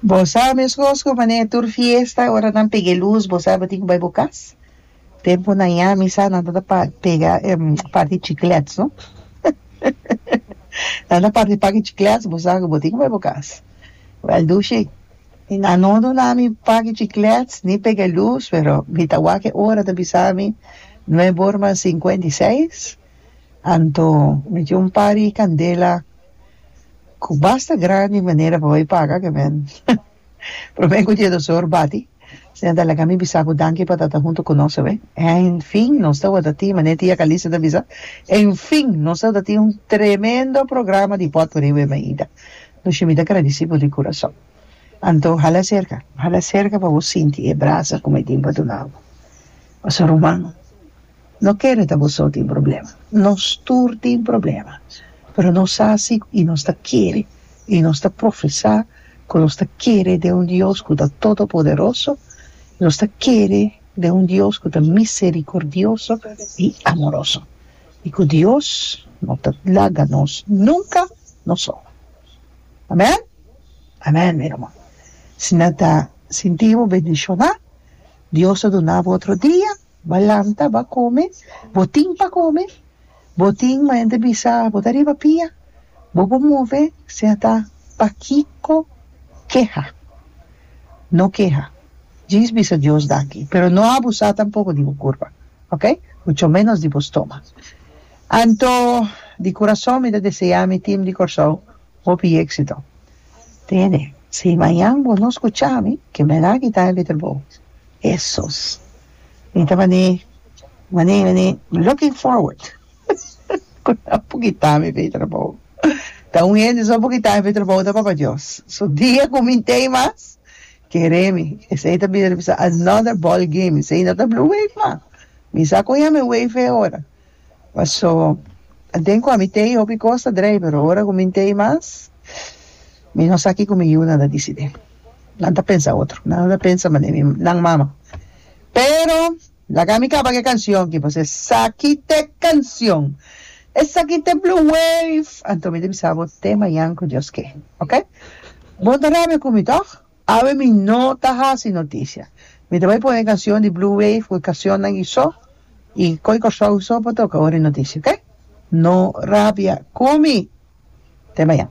Bo sa mescos cu manera tur fiesta ora nan pega e luz bo sa bo tin cu bay bo cas tempo na ya mi sa nan ta pa pega em parti chiclets no nan ta parti paki chiclets bo sa cu bo tin cu bay bo cas well do shi y nan no duna mi paki chiclets ni pega luz pero mi ta wak e ora ta bisa mi nueve hora mas cincuenta y seis Anto mi tin un par di candela cu basta grandi manera pa bai paga cu men prome cu dies dos or bati asina ta laga mi bisa cu danki pa ta hunto cu nos awe enfin nos ta wordo tin manera tia Calixto ta bisa enfin nos ta wordo tin un tremendo programa di bot por awe Maida Nushi mi ta gradici bo di curason anto hala cerca hala cerca pa bo sinti e brasa cu mi tin pa duna bo pasobra un man No kere ta bo so tin problema, nos tur tin problema, pero nos sa si y nos ta kere y nos ta profesa cu nos ta kere den un Dios cu ta todopoderoso, nos ta kere den un Dios cu ta misericordioso y amoroso y cu Dios no ta laga nos nunca nos so. Amen? Amen mi hermano. Si nan ta sinti bo bendiciona, Dios ta duna bo otro dia. Bo lanta, bo kome, bo tin pa kome, bo tin mañana bisa bo ta riba pia, bo por move si a ta pakiko keha, no keha, djis bisa Dios danki, pero no abusá tampoko di bo kurpa, ok, mucho menos di bo stoma. Anto di kurason mi ta deseá mi team di Kòrsou hopi éksito. Tene, si mañan bo no skuchami, ke mi a na kita e leterbou. Hesus. Mi ta bané, bané, bané, looking forward cu nan por kita mi pa e trabou. Ta un hende so por kita mi pa e trabou ta Papa Dios. So dia cu mi n'ta ei mas, kere mi. Esey ta bisa another ball game, esey no ta blue wave mas. Mi sa cu ya mi wave e ora. Paso den cu ami tey hopi cos ta drey pero ora cu mi tey mas mi no sa kico mi yiunan ta dicidi nan ta pensa otro nan no ta pensa mane mi nan mama pero laga mi caba cu e cancion aki pasobra esaki ta e cancion esaki ta e blue wave anto mi ta bisa bo te mayan cu Dios ke oke bo no ta rabia cu mi toch Awe mi no ta hasi noticia. Mi ta bai pone e cancion di Blue Wave cu e cacionnan y so y coi Corsou y so pa toca ora e noticia ok. No rabia cu mi. Te mañan.